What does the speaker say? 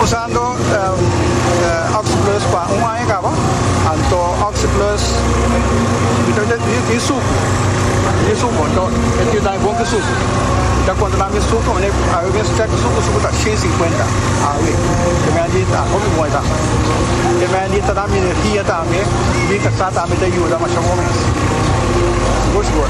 Usando Oxyplus pa un aña kaba, anto Oxyplus e tin suku, e tin suku, anto e tin daño bon ku suku. Mi ta konta nan mi suku, mi awe mi stek di suku, suku ta shen i sinkuenta, awe e mei di ta hopi bon e ta. E mei di ta dam energia tambe, mi kasa tambe ta yuda masha bon mes, sigur sigur.